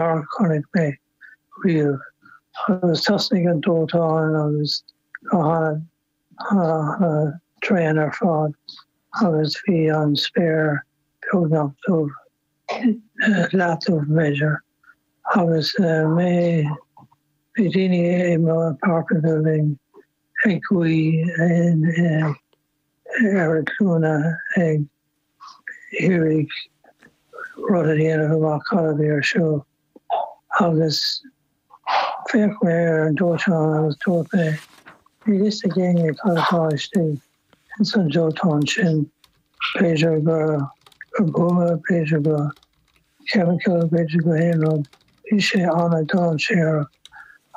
a chonaic mé riamh agus thosnaigh an dóiteán agus go hana tréan ar fad agus bhí an spéir beagnach dubh, leathdubh b'fhéidir, agus mé, bhí daoine i mo pháirc uile linn ag guí in. ar an scéal ag iarraidh rud a dhéanamh amach cad a bhí ar siúl agus féach mé ar an dóiteán agus dúirt mé níl a fhios ag éinne cad atá istigh ins an dóiteán sin, b'fhéidir go go buama, b'fhéidir go chemical, b'fhéidir go haon rud. Bhí sé an-dainséarach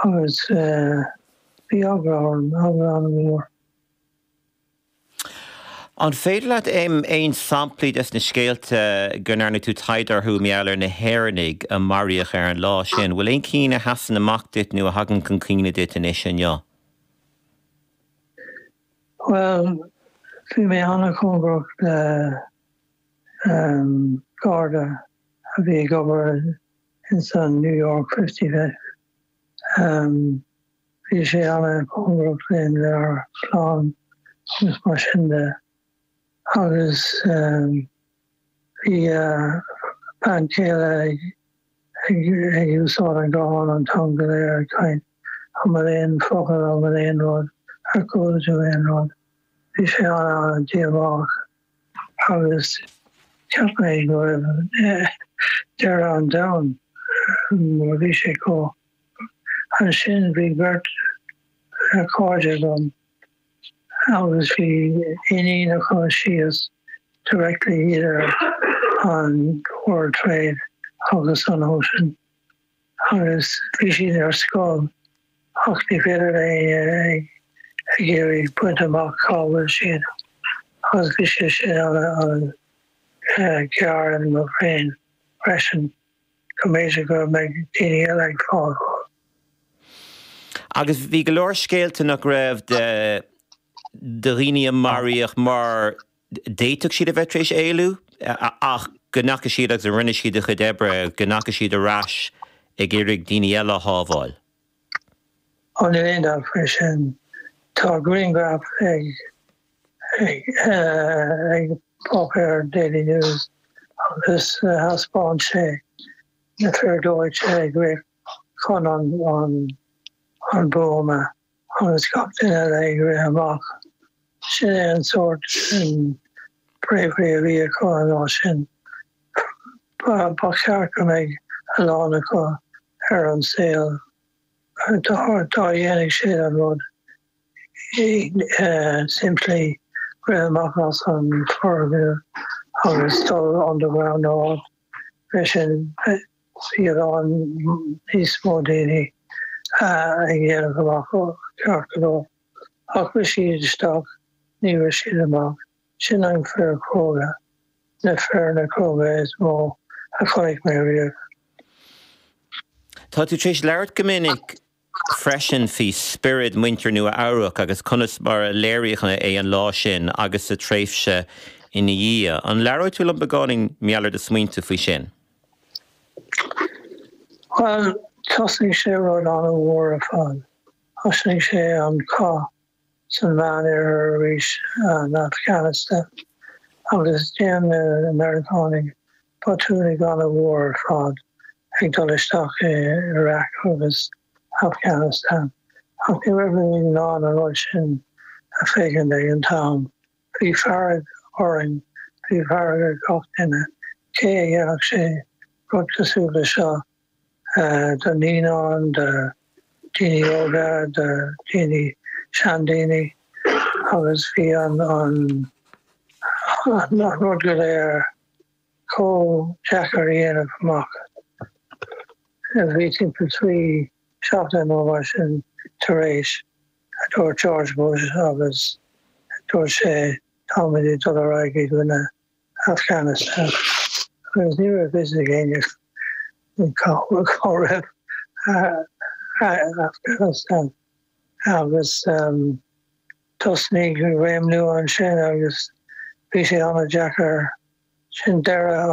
agus bhí eagla orm, eagla an-mhór. An féidir leat aon samplaí des na scéalta go ndearna tú taighde orthu mar gheall ar na hÉireannaigh a maraíodh ar an lá sin? Bhfuil aon cinn a sheasann amach duit nó a thagann chun cuimhne duit anois inniu? Bhuel, bhí mé ana-chóngarach le Garda a bhí ag obair ins an New York Fifty Five. Bhí sé ana-chóngarach linn lenár clann agus mar sin de agus bhí a bean chéile ag úsáid an guthán an t-am go léir ag caint an bhfuil aon focal an bhfuil aon rud ar chuala tú aon rud. Bhí sé ana-dhíomách agus cheap mé go raibh deireadh an domhain nuair a bhí sé chomh. Ansin bhí beirt chairde agam agus bhí iníon acu síos directly idir an World Trade agus an Ocean agus bhí siad ar scoil ach ní féidir le éinne ag ag iarraidh baint amach cá bhfuil siad agus bhí sé sin an géar orm féin freisin. go mb'fhéidir go mbeidh daoine eile ag fágáil. Agus bhí go leor scéalta nach raibh de de dhaoine a maraíodh mar d'fhéadfadh siad a bheith tar éis éalú ach go ndeachaigh siad agus a rinne siad a chuid oibre, go ndeachaigh siad ar ais ag iarraidh daoine eile a shábháil. Ó níl aon dabht faoi sin. Tá grianghraf ag. ag páipéar an Daily News agus thaispeáin sé na fir dóiteáin ag rith chun an buama agus gach duine eile ag rith amach. Sin é an sórt bravery a bhí acu an lá sin. Ba cheart go mbeidh a lán acu ar an saol dá dhéanfaidh siad an rud. Simply rith amach as an foirgneamh agus dul under ground nó a leithéid sin bhí a lán níos mó daoine ag dhéanamh amach ceart go leor ach rith siad isteach ní rith siad amach. Sin an fear cróga, na fearna cróga is mó a chonaic mé riamh. Tá tú tar éis labhairt go minic. freisin faoi spiorad muintir Nua Eabhrac agus conas mar a léiríodh é an lá sin agus sa tréimhse ina dhiaidh. An labhrófá liom beagáinín mar gheall ar do smaointe faoi sin? Bhuel, thosnaigh sé rud an-mhór ar fad. Thosnaigh sé an cath san Mheánoirthear arís, an Afghanistan, agus dhein na Meiriceánaigh botún ana mhór ar fad ag dul isteach i Iraq agus Afghanistan ach ní raibh muid in ann an rud sin a féachaint ag an t-am. Bhí fearg orainn, bhí fearg ar gach duine, cé a dhéanfadh sé rud cosúil le seo? do naíonáin, do dhaoine óga, do dhaoine seandaoine agus bhí an rud go léir chomh deacair a dhéanamh amach. Bhí timpeall trí seachtaine nó mar sin tar éis a dúirt George Bush agus dúirt sé tá muid ag dul ar aghaidh i gcoinne Afganastáin agus ní raibh fhios ag éinne cá raibh Afganastáin agus thosnaigh réim nua ansin agus bhí sé an-deacair. Sin deireadh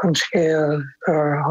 an scéil gur.